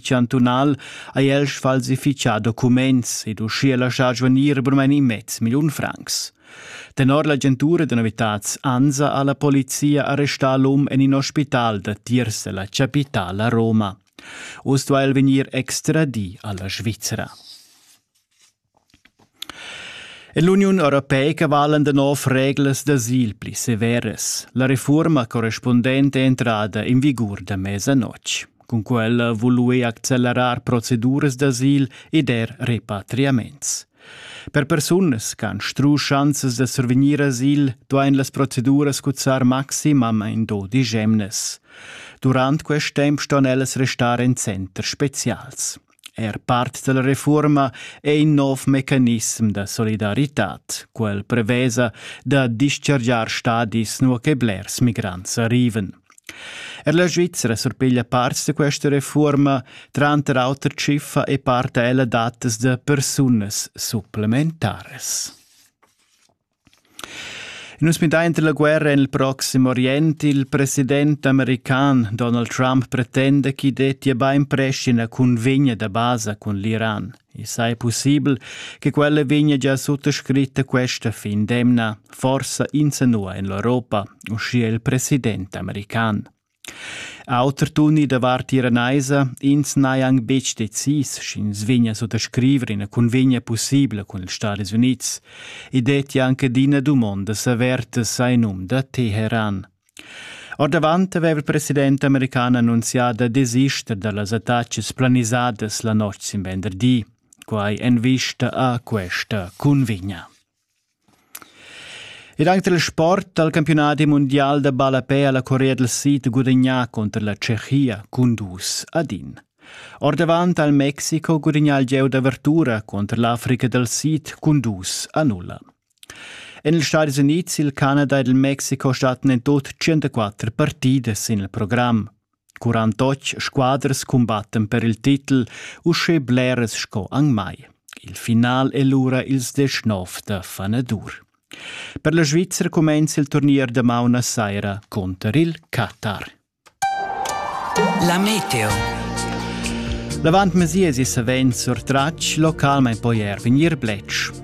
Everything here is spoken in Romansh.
chantunal ha el sfalsifichà documents ed uschia laschà svanir bermain in mez milliun francs. Tenor l'agentura da novitads ANSA ha la polizia arrestà l'um en in ospital da Tirse, la chapitala Roma. Uss duai el vegnir extradì alla Svizzera. Ell'Uniun europeica valan da nov reglas d'asil pli severas. La reforma correspundenta è entrada in vigur da mesanotg. Cun quella vului accelerar proceduras d'asil ed er repatriaments. Per persunas che han stru schanzas da survegnir asil, duain las proceduras cuzzar maximamain dodisch emnas. Durant quest temp ston ellas restar en centers spezials. Er part dalla refuorma ei in nov mecanissem da solidaritad, quel prevesa da dischargiar stadis nua che blers migrants arrivan. Er la Svizzera surpiglia parts da questa refuorma, tranter auter tschiffa e part ella datas da persunas supplementaras. Nus midain la guerra en il Proxim Orient. Il president american Donald Trump pretenda ch'i dettia bainprest ina cunvegna da basa cun l'Iran. I sai pussibel che quella vegnia gia suttascritta questa fin d'emna, forsa insanua en l'Europa, uschia il president american. Auter tuni davart Tiranaisa, ins n'hai anc betg decis, sch'ins vegnia sut a scriver ina cunvegna pussibla cun ils Stadis Unids. I dettia anc adina dumondas avertas a num da Teheran. Ordavant aveva il president american annunzià da desister da las attacas planisadas la notg sin venderdi. Quai en vista a questa cunvegna. Ed anche dal sport dal campiunadi mundial da ballapè ha la Corea del Sid gudagnà cunter la Tschechia cun dus ad in. Ordavant al Mexiko gudagnà il gieu d'avertura cunter l'Africa dal Sid cun dus a nulla. En ils Stadis Unids, il Canada ed il Mexiko stattan en tut 104 partidas sin il program. Quarantotg squadras cumbattan per il titel uschè bleras sco anc mai. Il final è lura ils deschnov da fanadur. Per la Svizra cumenza il turnier damaun a saira cunter il Qatar. La meteo. L'avant mesies è savens surtratg localmain poi er vegnir bletsch.